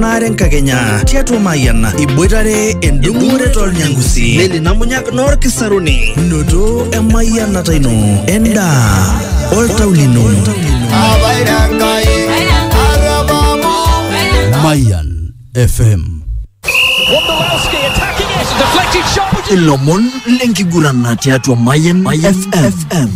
naare enkakenya tiatua Mayian iboitare endung'ore tolnyangusi leli namunyak noorkisaruni noto emayianata ino endaa oltau lino Mayan FM. Ilomon lenkiguran tiatua Mayan FM.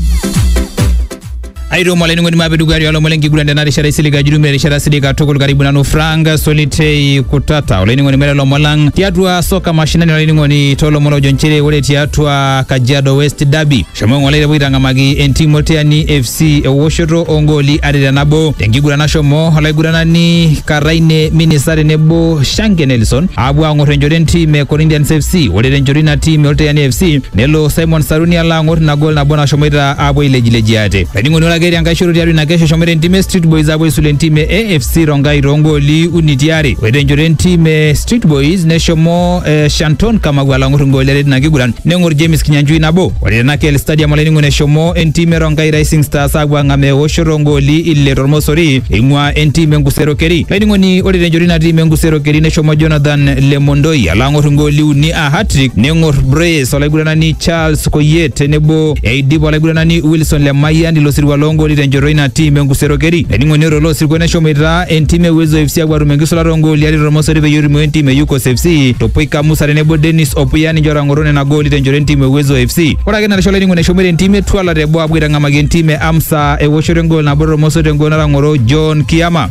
airemo olainining'oni maape dukuya tialo lomon lenkiguran tena rishata isilig ajurume erishata sidai katukul karibu nanu Frank Solitei Kutata olainining'oni mere lomon lang tiatua soka mashinani olainining'oni toolomon ojo nchere ore tiatua Kajiado West Derby shomo ng'ole tepuo aitang'amaki entim Olteani FC ewoshoto oongooli are te nabo tenkiguran nashomo olaiguranani Karaine Minisa tenebo Shanke Nelson aapuo aang'or enchoto entim e Corinthians FC ore tenchoto ina tim e Olteani FC nelo Simon Saruni alo aang'or ina gol nabo nashomoita apuo ailejileji ate. Laining'oni ore ake etii enkae shoto tiatua ina kesho eshomoita entim e Street Boys apuo aisula entim e AFC Rongai toongooli uni tiare. Ore tenchoto entim e Street Boys neshomo eh, Shanton Kamau alang'ur ingooli are tina kiguran neng'or James Kinyanjui nabo. Ore tena KL Stadium olainining'oni eshomo entim e Rongai Rising Stars apuo ang'amaa eoshoto oongooli ile tormosori eing'ua entim e Nkusero Keri. Laining'oni ore tenchoto ina tim e Nkusero Keri neshomo Jonathan Lemondoi alang'ur ingooli uni a hat-trick neng'or Brace olaiguranani Charles Koyie tenebo Eidipa olaiguranani Wilson Lemayian ilo sirua loongooli tenchoto ina tim enkusero keri. Ening'onioto ilo sirkwa neshomoita entim e Uwezo FC apuo atum enkisulata oongooli are tormosori peyie erumoo entim e Yukos FC. Topoika Musa tenebo Dennis Opuya ninche ootang'oro nena gooli tenchoto entim e Uwezo FC. Ore ake ina rishata olainining'oni eshomoita entim e Twala teboo apuo aitang'amaki entim e Amsa ewoshoto engool nabo tormosori tengool natang'oro John Kiama.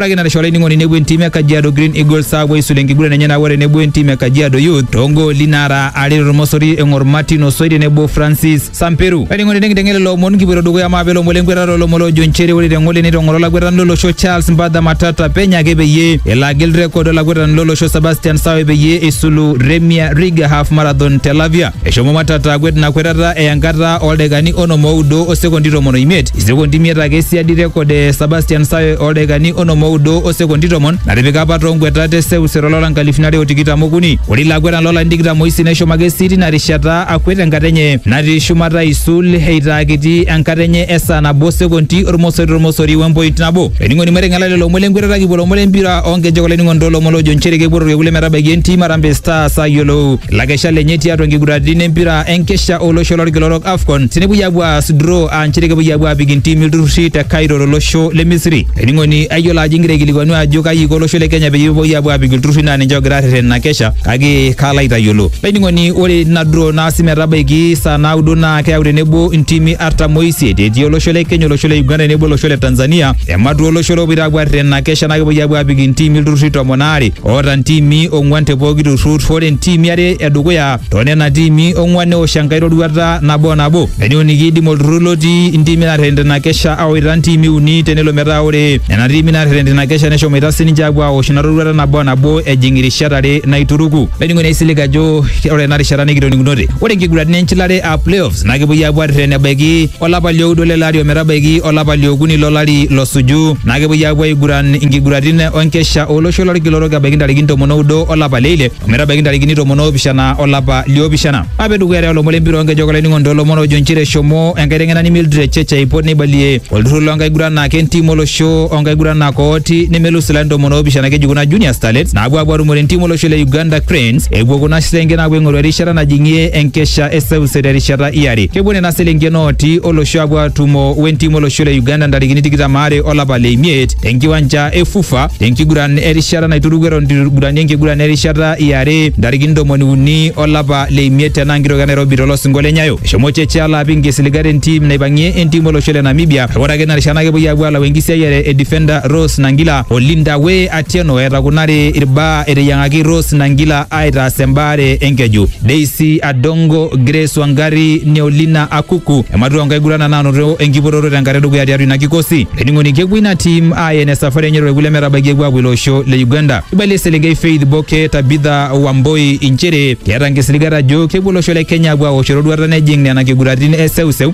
Ore narisho olainining'oni nepuo entim e Kajiado Green Eagles aapuo aisul enkiguran enye nabo tenebo entim e Kajiado Youth toongooli naara are tormosori eng'or Martin Osoi tenebo Francis Samperu. Olainining'oni tenikinteng'en lelo omon kipuoito dukuya amu aapa ilomon lenkwetata olomon loojo nchere ore teng'ole neitong'oro olakwetani lolosho Charles Mbadha Matata penyo ake peyie elo agil rekod olakwetani lolosho Sebastian Sawe peyie eisulu Remia Riga Half Marathon te Lavia. Eshomo Matata akwet ina kwetata eya enkata ooldaikani onom oudo o sekondi tomon oimiet, isekondi imiet ake siadi rekod e Sebastian Sawe ooldaikani onom oudo o sekondi tomon natipika apa too nkwetat e seuseu to lari loo nkalifuni are o tikitam okuni. Ore ilo akwetani loo larin tikitam oisiet neshomo ake sii tina rishata akwet enkata enye natii shumata aisul eitaa kiti enkata enye e saa nabo o sekondi ormosori tormosori we mpoint nabo. Olainining'oni maiteng'ela lelo omon le nkwetata kipuo lomon le mpira oo nkejek olainining'oni too lomon loojo nchere kepuo to lkekun le metabaiki entim Harambee Stars ayiolou Lakesha lenye tiatua nkiguraritin empira enkesha olosho lorkila orok AFCON tenepuoi apuo aas draw aa nchere kepuoi apuo apik intimi ilturrurri te Cairo tolosho le Misri. Ening'oni ayiolo ajo ingira aikilikuanu ajo kaji iko olosho le Kenya peyie epuoi apuo apik ilturrurri naa ninche ogira arreten ina kesha kake kaalo aitayiolo. Laining'oni ore ina draw naasi metabaiki saa naudo naa keyau tenebo intimi artam oisiet etii olosho le Kenya, olosho le Uganda tenebo olosho le Tanzania. Ematua olosho lopoito apuo arreten ina kesha naa kepuoi apuo apik intimi ilturrurri tomon aare. oota ntiimi ong'uan te pooki turrur ore ntiimi are edukuya too nena tiimi ong'uan neosh enkae roruata nabo nabo eneuni kiidim olturrur lotii intiimi naarreten tina kesha awaita ntiimi uni tenelo metaa ore nena tiimi naarreten tina kesha neshomoita sininche aapuo aosh ina roruata nabo nabo ejing irishat are naituruku. Olainining'oni aisilig ajo ore ena rishata nikitoning'unote ore nkiguraritin enchilare aa playoffs naa kepuoi aapuo arreten ebaiki olapa lioudo lele ari ometabaiki olapa liokuni lolari losuju naa kepuoi aapuo aiguran inkiguratin onkesha olosho lorkila orok ebaiki ntarikini tomon oudo olapa leile ometabaiki ntarikini tomon oopishana olapa liopishana ape dukuya te olomon lempira onkejek olainining'oni toolomon oojo nchere eshomo enkaiteng'enani Mildred Church aipot neibalie olturrur loonkaguranak entim olosho onkaguranak ooti nemelus ilarin tomon oopishana keji kuna junior starlets naapuo aapuo atumore entim olosho le Uganda Cranes epuo kuna sesenken aapuo aing'oru erishata najing'ie enkesha enkisha e seuse terishata e are. Kepuo nena selenken ooti olosho apuo atumo wentim olosho le Uganda ntarikini tikitam are olapa le imiet tenkiwanja e FUFA tenkiguran erishata naituruku eton itu igurani enkiguran erishata e are ntarikini ntomoni uni olapa le imiet tena nkitoki e Nairobi tolosingo le Nyayo. Eshomo Cheche alo apik nkisiligat entim naipang'ie entim olosho le Namibia kake ore ake ina rishata naa kepuoi apuo alau enkisiayiare e defender Rose Nangila o Linda Way Atieno eeta kuna are irbaa eteyiang'aki Rose Nangila aitaas embaare enkeju. Daisy Adongo, Grace Wangari, Neolina Akuku ematua nkaigurana naanoto enkipototo tenkata edukuya tiatua ina kikosi. Ening'oni kepuo ina tim ayen esafari enye torkule metabaiki epuo apuo ilo osho le Uganda. Eibalie eselenkei Faith Boke Tabitha Wamboi inchere keeta nkisiligat ajo kepuo olosho le Kenya apuo aosh eroruata nejing nena kiguratin e seuseu